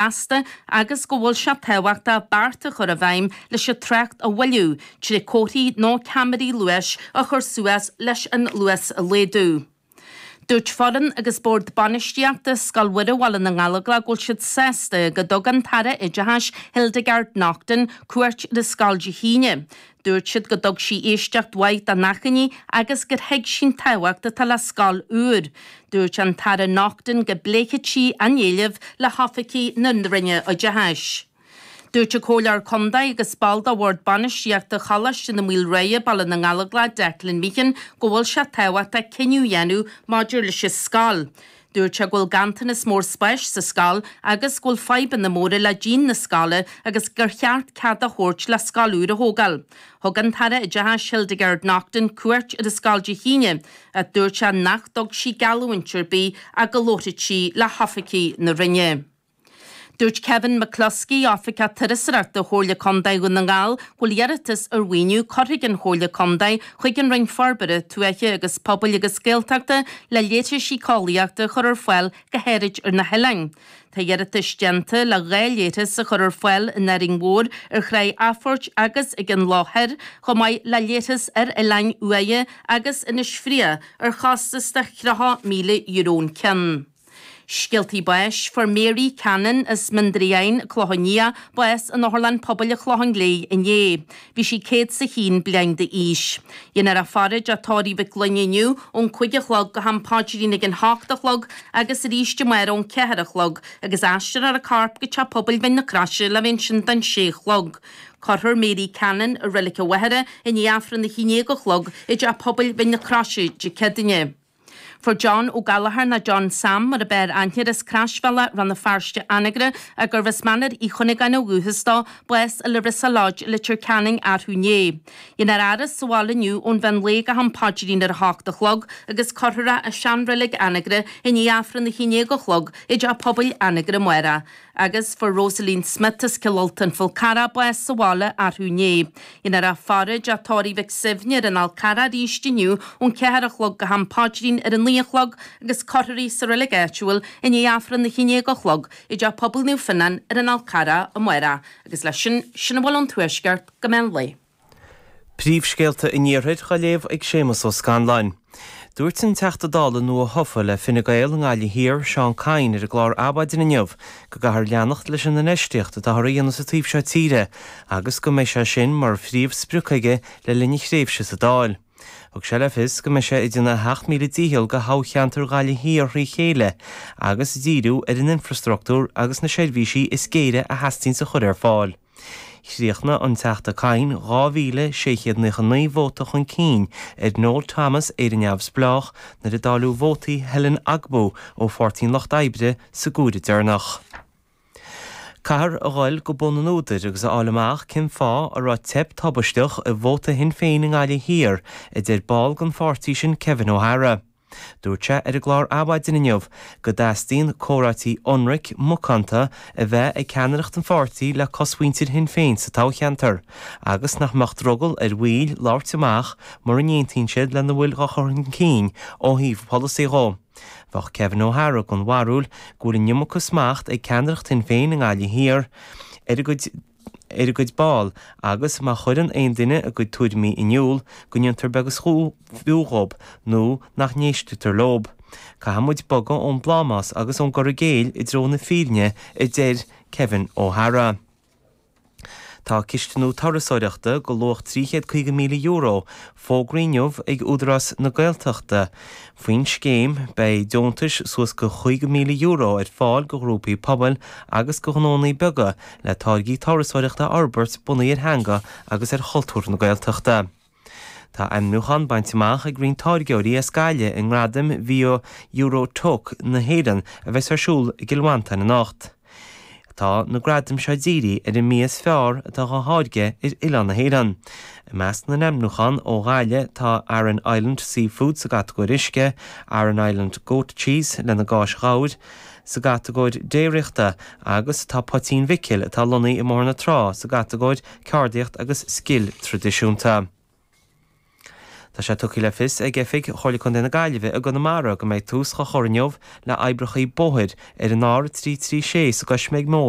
feasta agus go bhfuil sé tábhachtach beart a chur i bhfeidhm leis an trácht a mhoilliú, trí chomharthaí nó ceamaraí luais a chur suas leis an luas a laghdú. Dúirt foireann agus bord bainistíochta Scoil Mhuire Bhaile na nGallóglach go bhfuil siad sásta go dtug an tAire Oideachais Hildegarde Naughton cuairt ar an scoil Dé hAoine. Dúirt siad go dtug sí éisteacht mhaith dá n-achainí agus gur thuig sí an tábhacht atá le scoil úr. Dúirt an tAire Naughton go bpléifeadh sí a n-éileamh le hoifigigh na Roinne Oideachais. Dúirt an comhairleoir contae agus ball de bhord bainistíochta Choláiste na Maoile Ruaidhe, Baile na nGallóglach, Declan Meehan, go bhfuil sé tábhachtach cinneadh a dhéanamh maidir leis an scoil. Dúirt sé go bhfuil ganntanas mór spáis sa scoil agus go bhfuil fadhbanna móra le díon na scoile agus gur cheart cead a thabhairt le scoil úr a thógáil. Thug an tAire Oideachais Hildegarde Naughton cuairt ar an scoil Dé hAoine ach dúirt sé nach dtug sí geallúint ar bith ach go labharfadh sí le hoifigigh na Roinne. Dúirt Kevin McCloskey, Oifigeach Turasóireachta do Chomhairle Contae Dhún na nGall, go bhfuil iarratas ar mhaoiniú curtha ag an Chomhairle Contae chuig an Roinn Forbartha Tuaithe agus Pobail agus Gaeltachta le leithris éiceolaíochta a chur ar fáil go háirid ar na hoileáin. Tá iarratais déanta le dhá leithreas a chur ar fáil in Árainn Mhór, ar Thráigh Athphoirt agus ag an Loch Thoir, chomh maith le leithreas ar Oileáin Uaighe agus Inis Fraoigh ar chostas de thríocha míle euro an ceann. Scéaltaí Báis fuair Mary Cannon as Mín Doire Eidhinn, Clochán Liath, bás in Otharlann Pobail an Chlocháin Léith inné. Bhí sí 101 bliain d'aois. Déanfar a faire i dteach tórraimh Mhic Fhloinn inniu ón cúig a chlog go ham paidrín ag a hocht a chlog agus arís amárach ón ceathair a chlog agus aistreofar a corp go Teach Pobail Mhín na Croise le bheith ansin don sé a chlog. Cuirfear Mary Cannon i Reilig an Mhachaire i ndiaidh Aifreann a haon déag a chlog i dTeach Pobail Mhín na Croise Dé Céadaoin. Fuair John Ó Gallchóir nó John Sam mar ab fhearr aithne air as Croisbhealach Rann na Feirste Anagaire ach gurbh as Mainéar Uí Chuinneagáin ó dhúchas dó, bás i Larissa Lodge i Leitir Ceanainn arú inné. Déanfar a fhaire sa bhaile inniu ón mheán lae go ham paidrín ar a hocht a chlog agus cuirfear é i sean-reilig Anagaire i ndiaidh Aifreann a haon déag a chlog i dteach pobail Anagaire amárach agus fuair Rosaleen Smith as Cill Ulta, An Fál Carrach, bás sa bhaile arú inné. Déanfar a faire i dteach tórraimh Mhic Suibhne ar an Fhál Charrach arís inniu ón ceathair a chlog go ham Paidrín ar an naoi a chlog agus cuirfear í sa Reilig Áitiúil i ndiaidh Aifreann a haon déag a chlog i dteach pobail Naomh Fionán ar an Fhál Charrach amárach agus leis sin sin a bhfuil ón Tuaisceart go meán lae Príomhscéalta an Iarthair á léamh ag Séamus Ó Scanláin. Dúirt an Teachta Dála nua-thofa le Fine Gael i nGaillimh Thiar, Seán Kyne ar an gclár Adhmhaidin inniu go gcaithfear leanacht leis an infheistíocht atáthar a dhéanamh sa taobh seo tíre agus go mbeidh sé sin mar phríomh sprioc aige le linn a thréimhse sa Dáil. Thug sé le fios go mbeidh sé ag déanamh a sheacht míle dícheall do thoghcheantar Ghaillimh Thiar thrí chéile agus díriú ar an infrastruchtúr agus na seirbhísí is géire a theastaíonns a chur ar fáil. Chríochnaigh an Teachta Kyne 2,699 vóta chun cinn ar Noel Thomas, Éire Neamhspleách, nuair a dáileadh vótaí Helen Ogbu ó Pháirtí an Lucht Oibre sa gcomhaireamh deireanach. Caithfear a dhul go bun an údair agus a fháil amach cén fáth a raibh teip thubaisteach i vóta Shinn Féin i nGaillimh Thiar, a deir ball den pháirtí sin Kevin O'Hara. Dúirt sé ar an gclár Adhmhaidin inniu go dteastaíonn comhráití ionraic, macánta a bheith ag ceannaireacht an pháirtí le cosmhuintir Shinn Féin sa toghcheantar agus nach mbeadh drogall ar bhaill labhairt amach mura n-aontaíonn siad lena bhfuil á chur chun cinn ó thaobh polasaí dhó. Bheadh Kevin O'Hara den bharúil go bhfuil an iomarca smacht ag ceannaireacht Shinn Féin i nGaillimh Thiar ar a gcuid ar a gcuid ball, agus má chuireann aon duine a gcuid tuairimí in iúl, go ndéantar beag is fiú dhóib, nó nach n-éisteatar leob. Caithfidh muid bogadh ón bplámás agus ón gcur i gcéill i dtreo na fírinne, a deir Kevin O'Hara. Tá cistiú turasóireachta go luach €350,000, fógraithe inniu ag Údarás na Gaeltachta faoin scéim, beidh deontais suas go €50,000 ar fáil do ghrúpaí pobail agus do ghnónna beaga le táirgí turasóireachta a fhorbairt bunaithe ar theanga agus ar chultúr na Gaeltachta. Tá ainmniúchán bainte amach ag roinnt táirgeoirí as Gaillimh i nGradaim Bhia Euro-Toques na hÉireann a bheas ar siúl i gCill Mhantáin anocht. Tá na gradaim seo dírithe ar an mbia is fearr atá á tháirgeadh ar oileán na hÉireann. I measc na n-ainmniúchán ó Ghaillimh tá Aran Island Seafood sa gcatagóir uisce, Aran Island Goat Cheese lena gcáis ghabhair, sa gcatagóir déiríochta agus tá Poitín Mhicil atá lonnaithe i mBóthar na Trá sa gcatagóir ceardaíocht agus scil traidisiúnta. Tá sé tugtha le fios ag Oifig Chomhairle Contae na Gaillimhe i gConamara go mbeidh tús á chur inniu le oibreacha bóthair ar an R336 sa gCoisméig Mór,